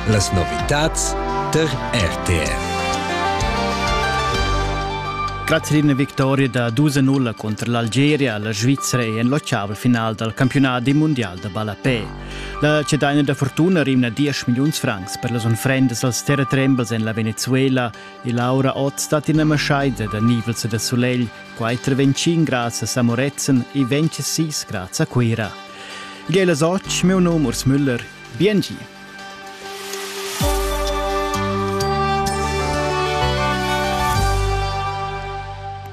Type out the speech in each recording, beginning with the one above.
Las novitads tar RTR. Grazie una vittoria da 2-0 contro l'Algeria alla Svizzera e en l'occiaval final dal campionat mondial da ballapè. La cedaina da fortuna rimna 10 milliuns francs per las unfrendas als terratrembels en la Venezuela e Laura Ott stat ina maschaida da nivels e da solegl Quai treventschin grazas a Moretzen e ventscha sis graz a Cuira. Igl è las otg, meu nom Urs Müller. Biengi!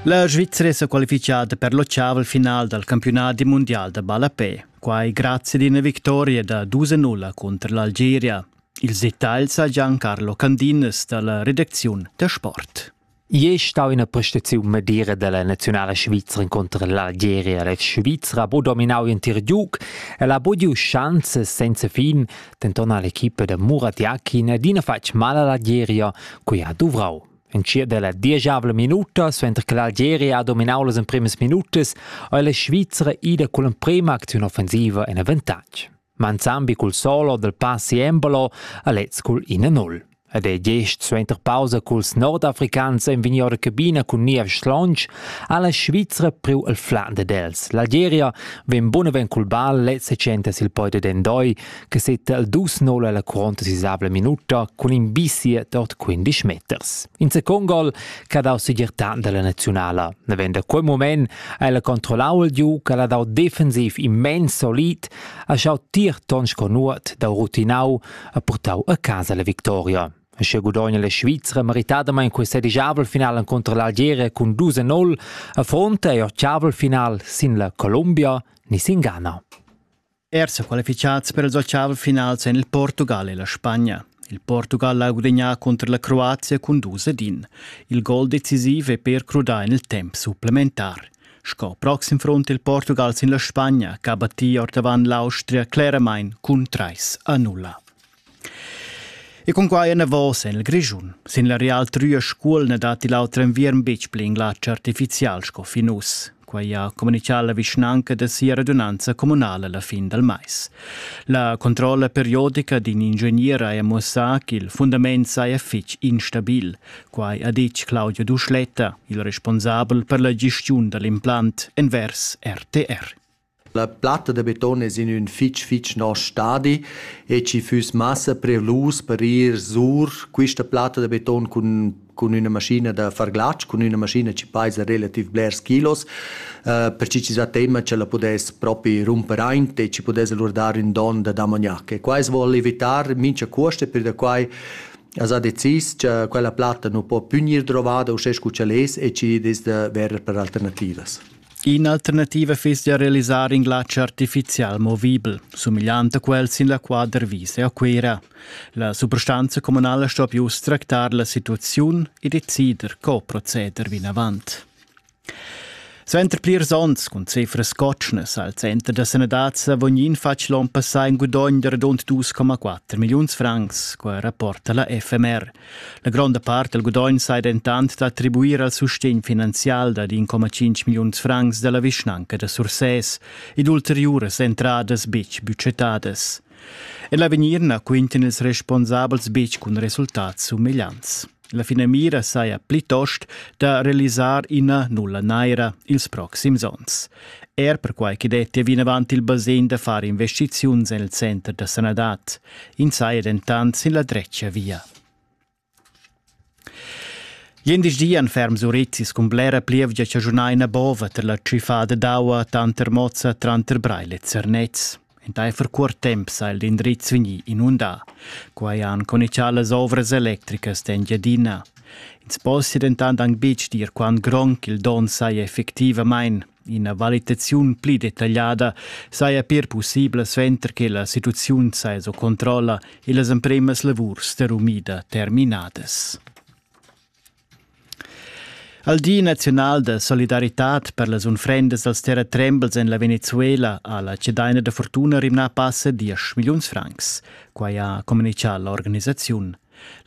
La Svizzera è qualifichada per l'occiaval final dal campionat mondial da ballapè, quai grazie ad una vittoria da 2-0 contro l'Algeria. Ils dettagls ha Giancarlo Candinas dalla redaziun da sport. Ier stau ina prestaziun medira della nazionala svizra incontro l'Algeria. La Svizra ha bu dominau in tir giug e la bu giu schanze senza fin, denton all'equipa da Murat Jakin adina fatg mal all'Algeria, cui ha duvrau. En cia della diesavla minuta, suenter che l'Algeria ha dominau las emprimas minutas, ha la Svizra ida con l'emprema acziun offensiva en avantatg. manzambi cul solo dal passi Embolo a lez cul 1-0. Ed è gest suenter pausa culs nordafricans en vegni ora cabina cun niev schlonch ha la Svizra priu il Flande dels. L'Algeria ven bunaven cul bal lez recente sil poide d'Endoi che setta il 2-0 alla curonta sisavla minuta cun in bisie dort 15 meters. In second gol che ha dau segir tant dalla nazionala. Navend da quel moment El controllau il giu che ha dau defensiv immens solid, ha schau tier ton sco nuot dau rutinau e purtau a casa la victoria. Sche gudogna la Svizra meritadamain questa digiabel final encunter l'Algeria cun 2-0 affronta ei ottavel final sin la Colombia ni sin Ghana. Er sa qualificads per els ottav finals en il Portugal e la Spagna. Il Portugal ha gudagnà cunter la Croazia cun dus ed in. Il gol decisiv è per crudar en il temp supplementar. Sco proxim front il Portugal sin la Spagna, che ha battì ordavant l'Austria cleramain cun 3 a 0. E cun quai enavos en il Grischun. Sin la Real Trüa Scuol na datti l'auter enviern betg pli in glatsch artifizial sco fin uss. Quai ha communitgà la vischnanca da sia radunanza communala la fin dal mais. La controlla periodica d'in ingegner ha mussà ch'il fundament saja fitg instabil. Quai ha ditg Claudio Duschletta, il responsabel per la gestiun da l'implant envers RTR. La platta da beton es in ün fich fich nosch stadi e schi füss massa prevlus per ir sur quista platta da beton cun cun üna maschina da far glatsch, cun üna maschina chi paisa relativ blers kilos, per chi chi sa tema ch'ella pudess propi rumper aint e chi pudess alura dar ün don da damognac. E quai as voul evitar mincha cuost e pür da quai as ha decis cha quella platta nu po pü gnir drovada uschè scu ch'el es e chi dess da verer per alternativas. In'alternativa fiss da realisar in glatsch artifizial movibel, sumigliant a quel sin la quadra vis e a Cuira. La suprastanza communala sto più tractar la situaziun e decider co proceder vinavant. Suenter plirs onns cun cifras cotschnas al Center da Sanadad Savognin fatg l'on passà in gudogn da radund 2,4 milliuns francs, qua rapporta la FMR. La gronda part dal gudogn sai dentant d'attribuir al sustegn finanzial dad 1,5 milliuns francs da la vischnanca da Sursès ed ulteriuras entradas betg budgetadas. En l'avegnir na quintan ils responsabels betg cun resultats sumegliants. La finamira saja plitost da realisar ina nulla naira ils proxims onns. Er perquai che dettia vinavant il basegn da far investiziuns en il center da sanadad. Ins saja dentant sin la dretga via. Glindesdi han ferms urizis cun blera plievgia chaschunar ina bova tar la tschiffada d'aua tanter Mozza tranter Breil e Zernez. Entaifer cuort temp sa il indriz vegnì inundà. Quai han conichà las ovras electricas d'Engiadina. Ins possia dentant anc betg dir quant gronch il donn saja effectivamain. Ina valitaziun pli detagliada saja pir pussibla suenter che la situaziun saja sco controlla e las empremas lavurs da rumida terminadas. Al Di naziunal da solidaritat per las unfrendas dals terratrembels en la Venezuela ha la cedaina da fortuna rimnà passa 10 milliuns francs. Quai ha communitgà l'organisaziun.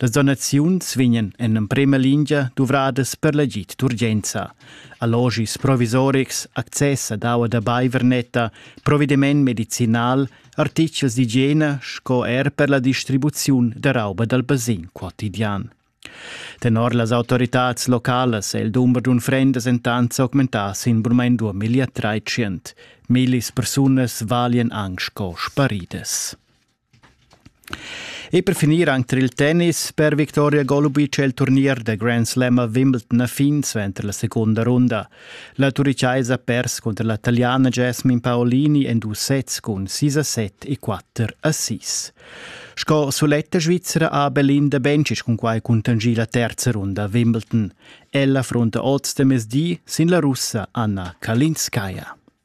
Las donaziuns vegnan en emprema lingia duvradas per l'agid d'urgenza. Allogis provisorics, access ad aua da baiver netta, provediment medicinal, artichels d'igiena sco er per la distribuziun da rauba dal basin quotidian. Tenor las autoritads localas è il dumber d'unfrendas entant s'augmentà sin burmain 2300. Millis persunas valian anc sco sparidas. E per finir anc tar il tennis per Victoria Golubic è il turnier da Grand Slam a Wimbledon a fin suenter la secunda runda. La turichaisa ha pers cunter la taliana Jasmine Paolini en dus sets cun 6 a 7 e 4 a 6. Sco suletta svizzera ha Belinda Bencic cunquai cuntanschì la terza runda a Wimbledon. Ella affrunta oz da mezdi sin la russa Anna Kalinskaya.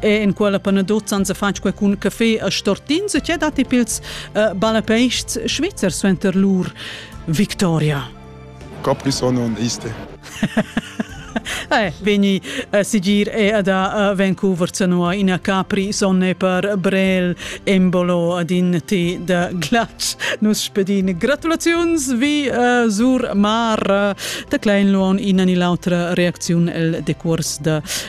e en quella panadot san se fatg qualcun caffé a stortins e che datti pils uh, balapeists Schweizer suenter lur Victoria. Capri sono un iste. eh, veni a eh, sigir e ad a eh, Vancouver zanua ina capri sonne per Brel embolo ad in ti da glatsch. Nus spedin gratulaziuns vi uh, sur mar uh, da klein luon ina ni l'autra reacziun el decurs da